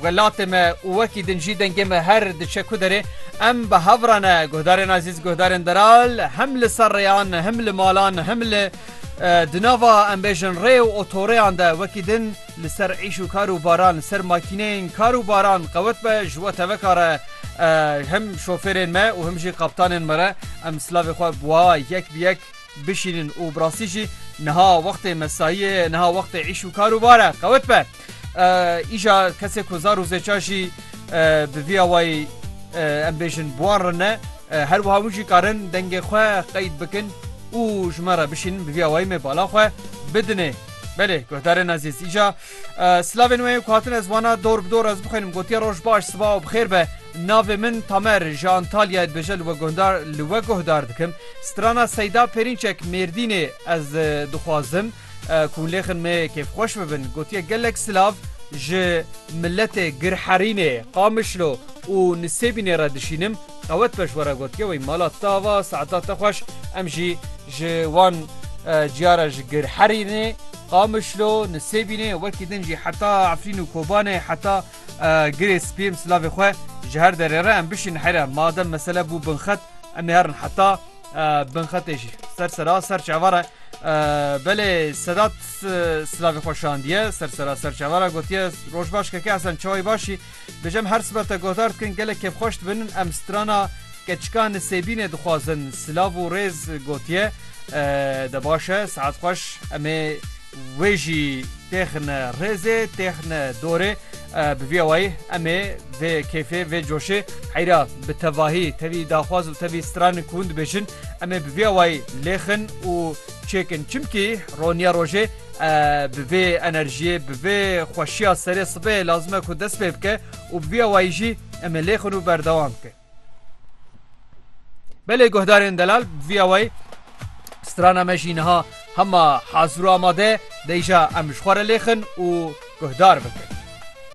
Welatê me û wekî din jî dengê me her diçe ku derê, em bi hev re ne, guhdarên ezîz, guhdarên delal, him li ser rêyan, him li malan, him li di nava em bêjin rê û otorêyan de wekî din li ser îş û kar û baran, li ser makîneyên kar û baran qewet be ji we teveka re him şofêrên me û him jî kaptanên me re em silavê xwe bi wa yek bi yek bişînin û bi rastî jî niha wextê mesayî ye, niha wextê îş û kar û bar e. Qewet be! Îja kesê ku zar û zêça jî bi vî awayî em bêjin buwan re ne her wiha wî jî karin dengê xwe qeyd bikin û ji me re bişînin bi vî awayî me bala xwe bidinê. Belê guhdarên ezîz îja silavên wê ku hatin ez wana dor bi dor ez bixwînim gotiye roj baş siba û bi xêr be. Navê min Tamer ji Antalyayê dibêje li we guhdar li we guhdar dikim. Strana Seyda Pêrînçek Mêrdînê ez dixwazim. Ku lêxin me kêfxweş bibin gotiye gelek silav ji miletê Girherînê, Qamişlo û Nisêbînê re dişînim. Qewet be ji we re gotiye wey mala tava Seeda te xweş. Em jî ji wan ciya re ji Girherînê, Qamişlo, Nisêbînê wekî din jî heta Efrîn û Kobanê heta Girê Spî em silavê xwe ji her derê re em bişînin here. Madem mesele bû binxet em ê herin heta Binxetê jî ser sera ser çavara belê Sedat silavê xwe şandiye ser sera ser çavara gotiye roj baş keke esen çawê başî dijem her sibe te gohdar dikin gelek kêfxweş dibinin em strana keçika nisêbînê dixwazin silav û rêz gotiye de baş e saet xweş em ê Wê jî têxine rêzê, têxine dorê. Bi vî awayî em ê vê kêfê, vê coşê heyra bi tevahî tevî daxwaz û tevî stranik hûn dibêjin, em ê bi vî awayî lêxin û çêkin. Çimkî roniya rojê bi vê enerjiyê, bi vê xweşiya serê sibehê lazim e ku dest pê bike û bi vî awayî jî em ê lêxin û berdewam bikin. Belê guhdarên delal viya wê strana me jî niha hema hazir û amade deyja em ji xwe re lêxin û guhdar bikin.